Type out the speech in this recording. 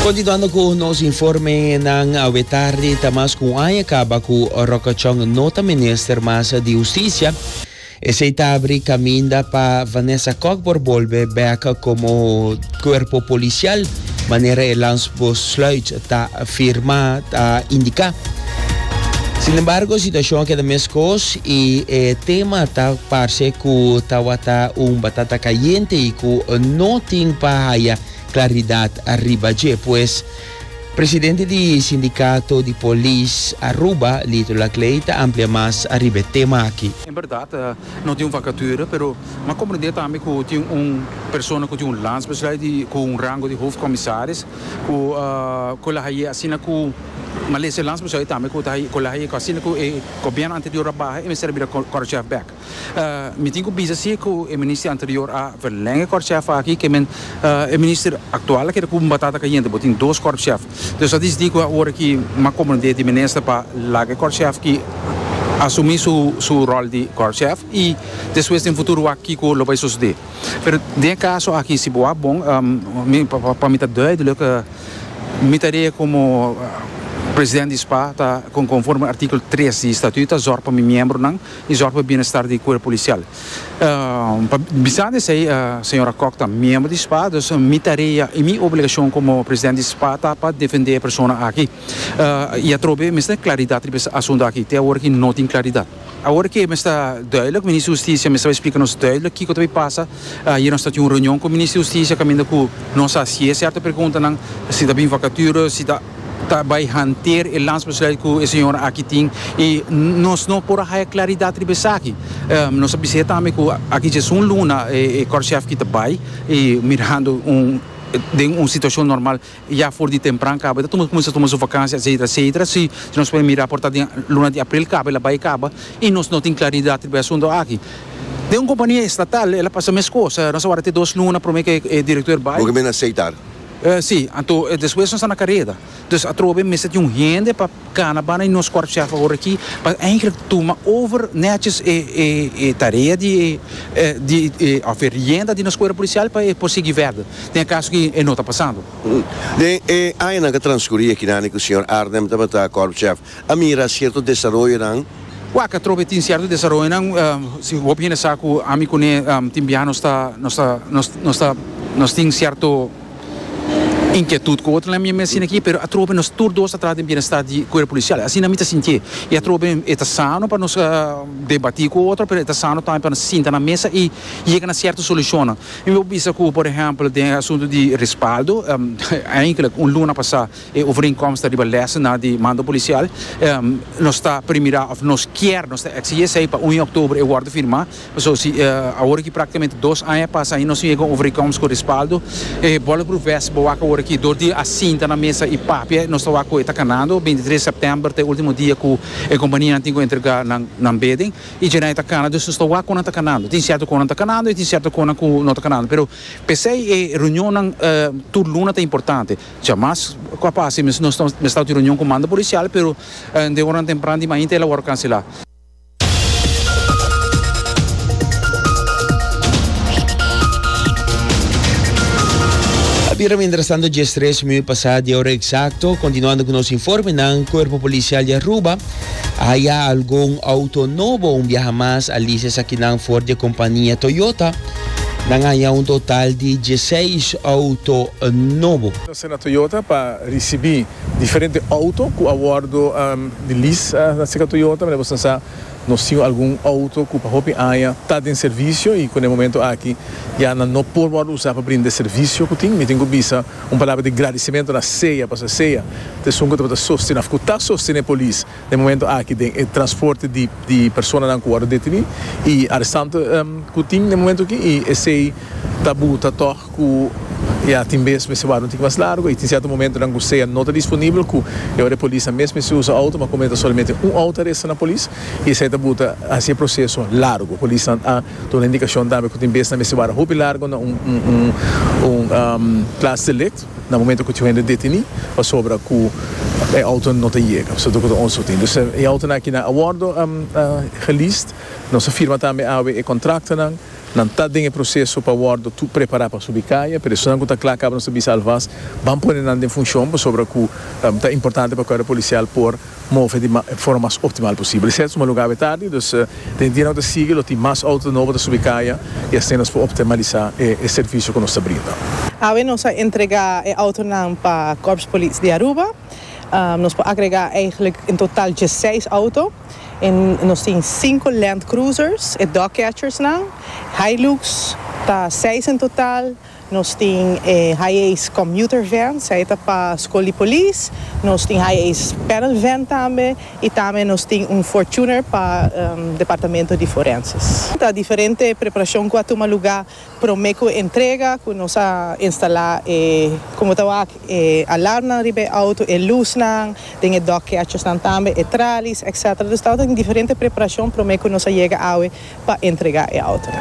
Continuando cu nos informenan, awe tardi ta mas cu un aña caba cu Rockachon no ta Minister mas di Husticia. Esey ta abri caminda pa Vanessa Kok por bolbe bek como Cuerpo Policial, manera e landsbosluit ta firmá ta indiká. Sin embargo, situashon a keda mes kos i e tema ta parse ku tawata un batata kayente i ku no tin pa haya klaridat riba dje. Pues, presidente di Sindikato di Polis Aruba, Lito Laclay ta amplia mas riba e tema aki. En bèrdat, no tin un vakature, pero m'ha komprendé tambe ku tin un persona ku tin un landsbesluit di ku un rango di hofkomisaris. Ku ku la haye asina ku Malesia lansa buso e tambe ku ta haye ku la haye ku asina ku e gobièrnu anterior a baha e mester a bira Khorchef bek. Mi tin ku bisa si ku e minister anterior a verlèn e Khorchef aki ke men e minister aktual a keda ku un batata kayente bo tin dos Khorchef. Dòs a disdi ku awor aki m'a komprondé di minister pa laga e Khorchef aki asumí su ròl di Khorchef i despues den futuro wak kiko lo bai sosodé. Pero den e caso aki si bo a bon pa mi ta duidelijk mi ta ria como president di spa ta conforme artikel tres di estatuut ta zorg pa mi miembronan y zorg pa e bienestar di cuerpo policial. Bisando esey señora Kok ta miembro di spa dus mi tarea y mi obligacion como president di spa ta pa defende e persona aki y atrobe mester claridad riba e asunto aki te awor aki no tin claridad. Awor ke mester duidelijk, Minister Hustisia mester bai splika nos duidelijk kiko ta bai pasa. Ayer nos ta tin un reunion ku Minister Hustisia kaminda ku nos a hasié sierto preguntanan, si ta bin vakature, si ta ta bai hanteer e landsbesluit ku e señora aki tin i nos no por a haya klaridat riba esaki. Nos a bis'é tambe ku aki dje esun luna e Kòrshèf ki ta bai i mirando un den un situashon normal Ya for di tempran kaba, e ta kuminsá tuma su vakansia etsetera etsetera. Si nos puede mirá por ta den luna di april kaba el a bai kaba i nos no tin klaridat riba e asuntu aki. Den un kompania estatal el a pasa mes kos. Nos a wardá te dos luna promé ku e direktor bai. Lo ke men a seitar. Sí, anto despues nos a na kareda. Dus atrobe mester tin un hende pa. Cana bana y nos korpschef awor aki pa eigenlijk tuma over neches e e e tarea di e e di e of e rienda di nos cuerpo policial pa e por sigui verder den e caso cu e no ta pasando. Den e añanan cu a transcuri akinani cu señor Arnhem tabata korpschef a mira cierto desaroyonan. Wak atrobe tin cierto desaroyonan si hopi hende sa cu ami cu ne tin biaha nos ta nos ta nos ta nos tin cierto. Inquietud cu otro nan mi a mensina aki pero atrobe nos tur dos ta trata di bienestar di cuerpo policial asina mi ta sintié y atrobe e ta sano pa nos debati cu otro pero e ta sano tambe pa nos sinta na mesa y yega na cierto solucionnan mi bo bisa cu por ehempel den e asunto di respaldo eindelijk un luna pasa e overeenkomst riba lessen nan di mando policial nos ta primira of nos kier nos ta exige esey pa uno di october e wordo firma. So si awor aki praktikamente dos aña pasa i nos no yega un overeenkomst ku respaldo, e Bollebroek West bo wak awor aki dor di a sinta na mesa i papia, nos ta wak ku e ta kanando, bintitres sèptèmber ta e ultimo dia ku e kompanianan tin ku entregá nan nan bidding i djé nan e ta kana, dus nos ta wak ku nan ta kanando. Tin sierto konan ta kanando i tin sierto konan ku no ta kanando, pero p'esei e reunionnan tur luna ta importante. Djamas ku a pasa i nos nos ta mester ta un reunion ku manda polisial, pero de oranan tempran di mainta el a wòrdu kanselá. Bira mientras tanto, 10.3 minuut pasa di hora exacto. Continuando con nos informe, nan Cuerpo Policial di Aruba haya algun auto nobo un viaja mas a lises aquí nan for di compania Toyota. Nan haya un total di 16 auto nobo. Nos na Toyota pa ricibi. Diferente auto ku a wòrdu di lis na Sika Toyota, manera boso ta sa nos tin algun auto ku pa hopi aña ta den servisio i ku na e momentu aki ya nan no por wòrdu usá pa brinda e servisio ku tin. Mi tin ku bisa un palabra di gradisimentu na sea, pasobra sea ta esun ku tabata sostené òf ku ta sostené polis. Den momento aki den e transporte di di personanan ku wòrdu detení i arestantu ku tin den momento aki i esei ta buta tòg ku ya tin bes mester wòrdu un tiki mas largu i tin sierto momentonan ku sea no ta disponibel ku e ora e polis ta mes mester usa outo ma komente solamente un outo ta resta na polis i esei ta buta hasi e proseso largu polisnan a duna indikashon tambe ku tin bes nan mester wòrdu hopi largu na un un un klas delikt. Na momento cu tjoe hende deteni pasobra cu e auto no ta yega, so toco ta onso tin. Dus e autonan aki nan a wordo geleased. Nos a firma tambe awe e contractonan. Nan ta den e proceso pa wordo tur prepara pa subi caya. Pero esonan cu ta cla caba nos ta bisa alvast, ban pone nan den funcion pasobra cu ta importante pa Cuerpo Policial por. move di forma mas optimal posibel. Esei ta suma lo gabe tardi, dus den e dia nan ku ta sigui lo tin mas outo nobo ta subi kaya i asina nos por optimalisá e servisio ku nos ta brinda. Awe nos a entregá e outonan pa Kòrps Polis di Aruba. Nos por agregá eigentlik en total diesseis outo. Nos tin sinku Land Cruisers, e dog catchers nan, Hilux, ta seis en total. Nos tin e high ace commuter van, sa e ta pa School di Polis. Nos tin high ace panel van tambe y tambe nos tin un Fortuner pa Departamento di Forenses. Ta diferente preparacion cu a tuma luga prome cu entrega cu nos a instala e como ta wak e alarmnan riba e auto, e luznan, den e dog catchersnan tambe, e tralies etc. Dus tabata tin diferente preparacion prome cu nos a yega awe pa entrega e autonan.